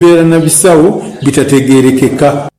Okubeera na bisawo bitategeerekeka.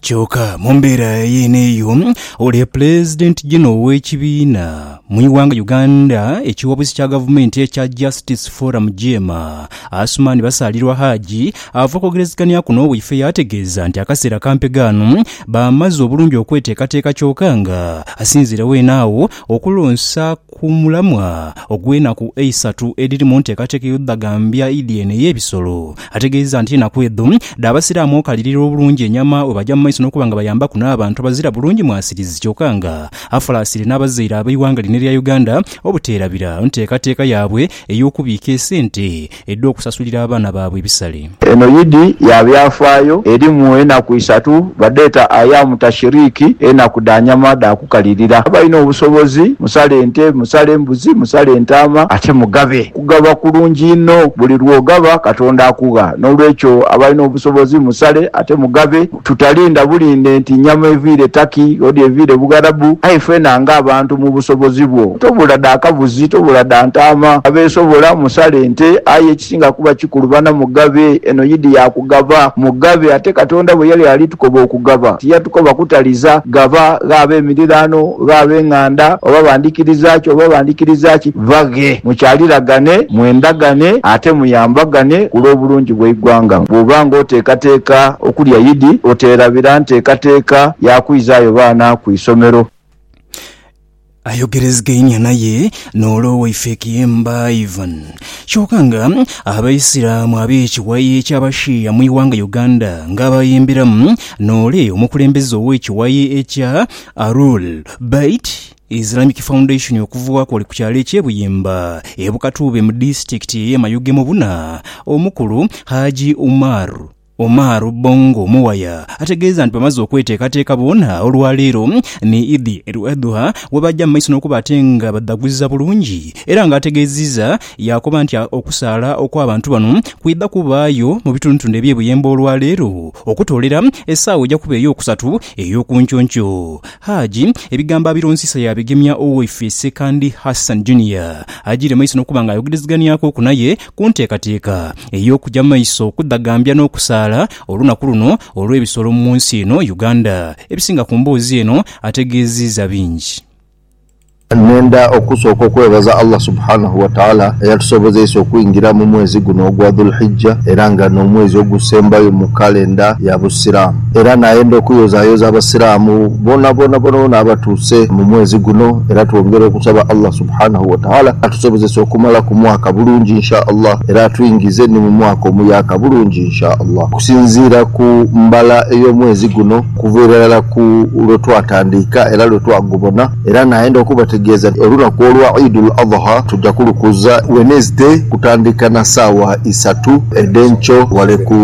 Kyoka mumbeera yeene eyo, oli Pulezidenti Jeno ow'ekibiina mu ighanga Uganda eky'obusi kya gavumenti ekya Justice Forum, Jeema, Asuman Basaalirwa Haji ava okwogerezeghanyaku n'owaife yaategeeza nti akaseera kampega ano baamaze obulungi okweteekateeka kyoka nga asinziire weene agho okulonsa Ku mulamwa ogw'enaku eisatu edhiri mu nteekateeka ey'odhagambya Idi eno ey'ebisolo, ategeezezza nti enaku edho dh'abasiraamu okalirira obulungi enyama bwebaja mu maiso n'okuba nga bayambaku n'abantu abazira bulungi mwasirizi kyoka nga afalaasire n'abazaire ab'eighanga lino erya Uganda obuteerabira nteekateeka yaabwe ey'okubiika esente edh'okusasulira abaana baabwe ebisale. Eno y'Idi ya byafaayo erimu enaku isatu, badheeta Ayamu Tashiriki, enaku dha nyama dha kukalirira. Abalina obusobozi musale ente, musale embuzi, musale entaama ate mugabe. Okugaba kulungi inho, buli lw'ogaba Katonda akugha. N'olwekyo abalina obusobozi musale ate mugabe. Tutalinda bulinde nti nyama eviire Turkey odi eviire Bugharabu aye fena nga abantu mu busobozi bwo tobula dha kabuzi tobula dha ntaama. Abeesobola musale nte aye ekisinga kuba kikulu bana mugabe eno yidi ya kugaba mugabe ate Katonda bwe yali ali tukoba okugaba tiyatukoba kutaliza gaba gha ab'emiriraano gha ab'enganda oba bandhikiriza ki oba bandhikiriza ki. baghe. Mukyaliragane, mwendagane ate muyambagane ku lw'obulungi bw'eighanga. Bw'oba ng'oteekateeka okulya Idi, oteerabira nteekateeka ya kwizaayo baana ku isomero. Ayogerezegainia naye n'ol'owaife Kiyemba Ivan. Kyoka nga Abaisiramu ab'ekiwayi eky'Abashia mu ighanga Uganda ng'abayemberamu n'ole omukulembeze ow'ekiwayi ekya Arul Bait Islamic Foundation okuvughaku oli ku kyalo ekye Buyimba e Bukatuube mu disitulikiti eye Mayuge mu buna omukulu Haji Umar Omar Bongo Muwaya ategeeza nti bamaze okweteekateeka boona olwaleero ni Idi El Adhuha webaja mu maiso nokuba ate nga badhaguza bulungi era nga ategeziiza yakoba nti okusaala okwa bantu bano kwidha kubaayo mu bitundutundu ebye Buyemba olwaleero okutoolera esaawa eja kuba eyokusatu eyokunkyonky Haji ebigambo abironzisa yaabigemya owaife Ssekandi Hassan Junior ajiire maiso n'okuba nga ayogerezeganyakoku naye ku nteekateeka ey'okuja mu maiso okudhagambya n'okusaala olunaku luno olw'ebisolo mu nsi eno Uganda. Ebisinga ku mboozi eno ategeeziiza bingi. Nenda okusooka okwebaza Allah Subhaanahu Wataala eyatusobozeisa okwingira mu mwezi guno ogwa Dhul-Hijja era nga n'omwezi ogusembayo mu kalenda ya Busiraamu. Era nayenda okuyozayoza Abasiraamu boonaboona boonaboona abatuuse mu mwezi guno era twongera okusaba Allah Subhaanahu Wataala atusobozese okumalaku mwaka bulungi Insha Allah era atwingize ni mu mwaka omuyaaka bulungi Insha Allah. Okusinziira ku mbala ey'omwezi guno, Kuva irala ku lwe twatandiika era lwe twagubona, era naenda okubategeeza nti olunaku olwa Eidul Adhuha tuja kulukuza Wednesday kutandiika na saawa isatu edhenkyo wale ku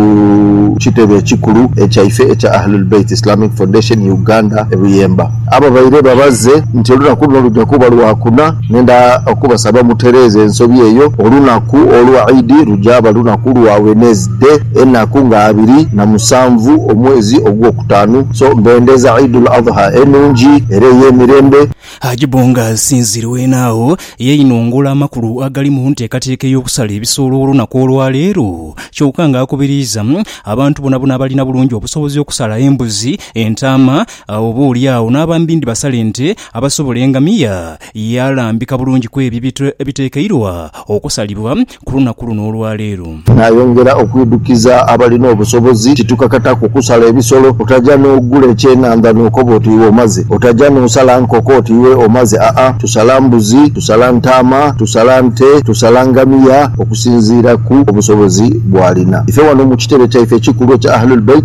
kitebe ekikulu ekyaife ekya Ahlul Bait Islamic Foundation Uganda e Buyemba. Ababaire babaze nti olunaku luno luja kuba lwakuna. Ngenda okubasaba mutereeze ensobi eyo. Olunaku olwa Idi lujaaba lunaku lwa Wednesday, enaku nga abiri na musanvu omwezi ogwokutaanu. So mbendeeza Idul Adha enungi era eyemirembe. Haji Bonga asinziire weena agho yeinungula amakulu agali mu nteekateeka ey'okusala ebisolo olunaku olwaleero kyoka nga akubiriiza abantu bonabona abalina bulungi obusobozi okusala embuzi, entaama, Agho oboolyawo n'abambi ndibasale nte abasobola engamiya, ye alambika bulungi ku ebyo ebitekeirwa okusalibwa ku lunaku luno olwa leero. Naayongera okwidhukiza abalina obusobozi ti tukakataku kukusala ebisolo. Otaja n'ogula ekyenhandha n'okoba oti iwe omaze. Otaja n'osala nkoko oti iwe omaze aa, tusala mbuzi, tusala ntaama, tusala nte, tusala ngamiya okusinziira ku obusobozi bw'alina. Ife wano mu kitebe kyaife ekikulu ekya Ahlul Bait,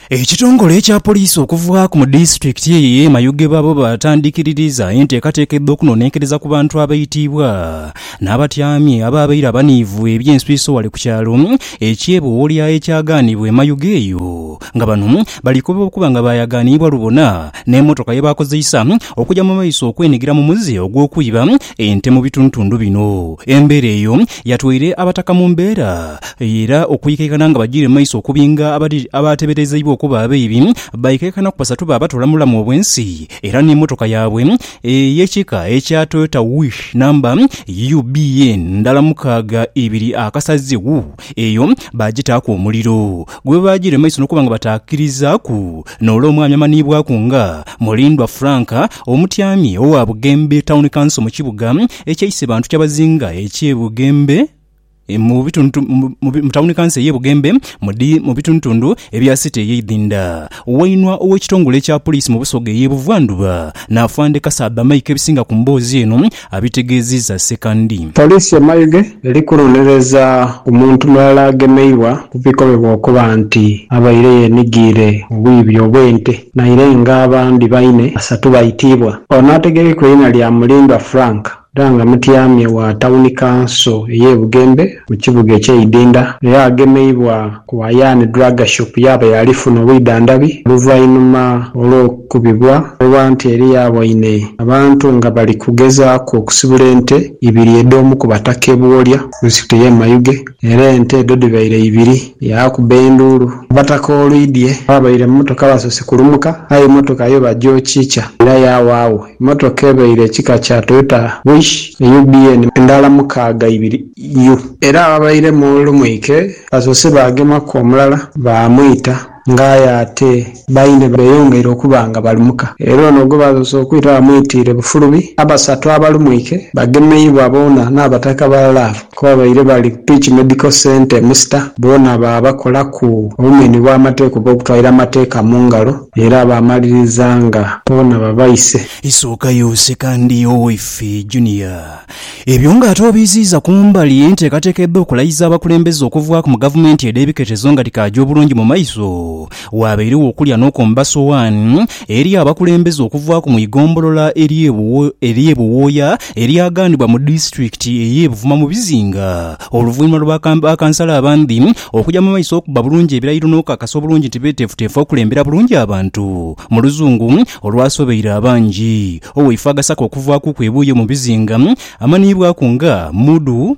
Ekitongole ekya poliisi okuva ku mu disitulikiti eyo ey'e Mayuge babo baatandikiririza enteekateeka edh'okunoonenkereza ku bantu abaitiibwa n'abatyami abaabaire abaniivu eby'enswiiso ghale ku kyalo eky'e Bowolya ekyagaanibwa e Mayuge eyo nga bano balikoba okuba nga baayagaaniibwa lubona n'emotoka ye baakozeisa okuja mu maiso okwenigira mu muze ogw'okwiba ente mu bitundutundu bino. Embeera eyo yatwaire Abataka mu mbeera eyo era okwikaikana nga bajiire mu maiso okubinga abateberezeibwa okuba abaibi baikaikanaku basatu baabatoola mu bulamu obwensi era n'emotoka yaabwe ey'ekika ekya Toyota Wish namba UBN ndala mukaaga ibiri akasazi Eyo baagitaaku omuliro, gwe baagira emaiso n'okuba nga bataakirizaaku noole omwami amanhiibwaku nga Mulindwa Frank, omutyami owa Bugembe Town Council mu kibuga ekya Isebantu kyabazinga eky'e Bugembe mu mu Town Council ey'e Bugembe mu bitundutundu ebya City ey'e Idhinda. Wainwa ow'ekitongole ekya Poliisi mu Busoga ey'e Buvandhuba, Nafande Kasaadha Mike ebisinga ku mboozi eno, abitegeezizza Sekandi. Poliisi e Mayuge eri kunonereza omuntu mulala agemeibwa ku bikomebwa okuba nti abaire yenigiire mu bwiibi obw'ente naire nga abandi baine basatu baitiibwa. Ono ategekekwa eina lya Mulindwa Frank era nga mutyamye wa tawuni kanso eye Bugembe mu kibuga ekyeidinda, era agemeibwa ku Hayani Drug Shop yaaba yaalifuna obwidhandhabi oluvainhuma olw'okukubibwa olwa nti eli yaaboine abantu nga bali kugezaaku okusibula ente ibiri edh'omu ku bataka e Buwolya mu disitulikiti ey'e Mayuge era ente edho dhibaire ibiri yaakuba enduulu abataka olwidhie ababaire mu mmotoka basoose kulumuka aye mmotoka yo bagyokikya era yaawaagho Mmotoka ebaire ekika kya Toyota Wish eyu BN endala mukaaga ibiri U. Era ababaire mu Lumwike basoose baagemaku omulala baamwita nga aye ate baine beyongeire okuba nga balumuka era ono gwe baasoose okwita bamwitiire bufulubi. Abasatu abalumwike bagemeibwa boona n'abataka ba laavu. Ku babaire bali ku Peach Medical Centre e Musita boona baabakolaku obumenhi bw'amateeka oba okutwalira amateeka mu ngalo era baamaliriza nga boona babaise. Isookayo oseka ndi owaife Junior. Ebyo nga ate obiiziiza ku mbali enteekateeka edh'okulayiza abakulembeze okuvaaku mu gavumenti edh'ebiketezo nga dhikaagya obulungi mu maiso, waabairegho okulya n'okomba sowaani eri abakulembeze okuvaaku mu igombolola ery'e Buwooya eryaghanibwa mu disitulikiti ey'e Buvuma mu bizinga oluvanhuma lwa bakansala abandi okuja mu maiso okubba bulungi ebirayiro n'okukakasa obulungi nti beeteefuteefu okulembera bulungi abantu mu luzungu olwasobeire abangi. Oweifo agasaka okuvaakuku ebuuyo mu bizinga amanhiibwaku nga Mudu.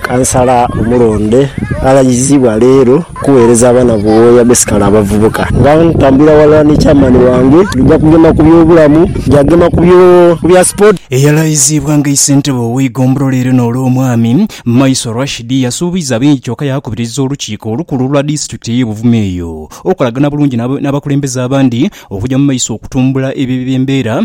Kansala omulonde alagizibwa leero kuweereza abaana Buwooya besikale abavubuka. Nga ntambulira ghalala ni Chairman wange, tugya kugema ku by'obulamu, tugya gema ku bya sport. Eyalayiziibwa nga Isentebe ow'eigombolola lino Olwomwami Maiso Rashid yasuubiza bingi kyoka yaakubiriza olukiiko olukulu olwa disitulikiti ey'e Buvuma eyo okukolagana bulungi n'abakulembeze abandi okugya mu maiso okutumbula ebyo eby'embeera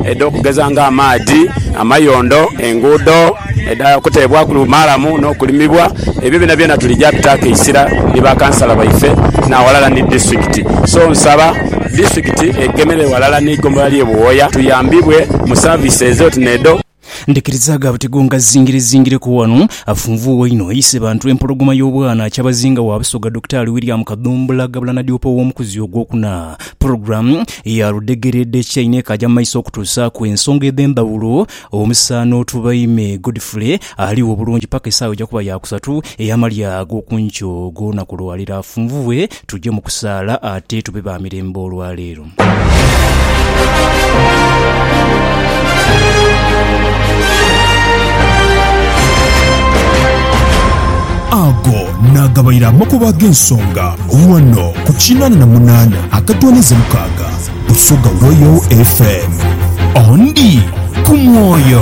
edha okugeza nga amaadhi, amayondo, enguudo edha kuteebwaku maalamu n'okulimibwa, ebyo byonabyona tulija bitaku eisira ni ba kansala baife n'aghalala ni disitulikiti. So nsaba disitulikiti egemere ghalala n'eigombolola ly'e Buwooya tuyambibwe mu service ezo oti n'edho. Ndhikiriza gha buti go ngazingirezingireku ghano, afunvuuwa inho aise bantu empologoma y'obwana Kyabazinga wa Busoga Dokitaali William Kadhumbula Gabula Nadiope ow'omukuzi ogwokuna. Pulogulaamu ya Ludhegereedhe ki Einho ekaaja mu maiso okutuusaaku ensonga edh'endhawulo omusaano tubaime Godfrey aligho bulungi paka esaawa eja kuba ya kusatu ey'amalya ag'oku nkyo og'olunaku lwa leero afunvubwe tuje mu kusaala ate tube ba mirembe olwa leero. Ago naagabaire amakubo ag'ensonga ghano ku kinaana na munaana akatooneza mukaaga Busoga Royal FM. Ondi ku mwoyo.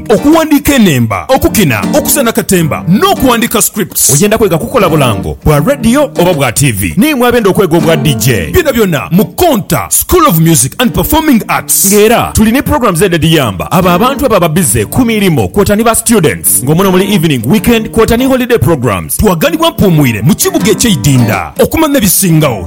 Okuwandiika enhemba, okukina, okusena katemba n'okuwandiika scripts. Oyenda kwega kukola bulango bwa radio oba bwa tiivi? Naimwe abenda okwega obwa DJ? Byonabyona mu Konta School of Music and Performing Arts. Nga era tuli ni programs edha edhiyamba abo abantu ababa bize ku mirimo kwota ni ba students nga muno muli evening, weekend kwota ni holiday programs. Twaganibwa Mpuumwire mu kibuga eky'eidinda okumanya ebisingao.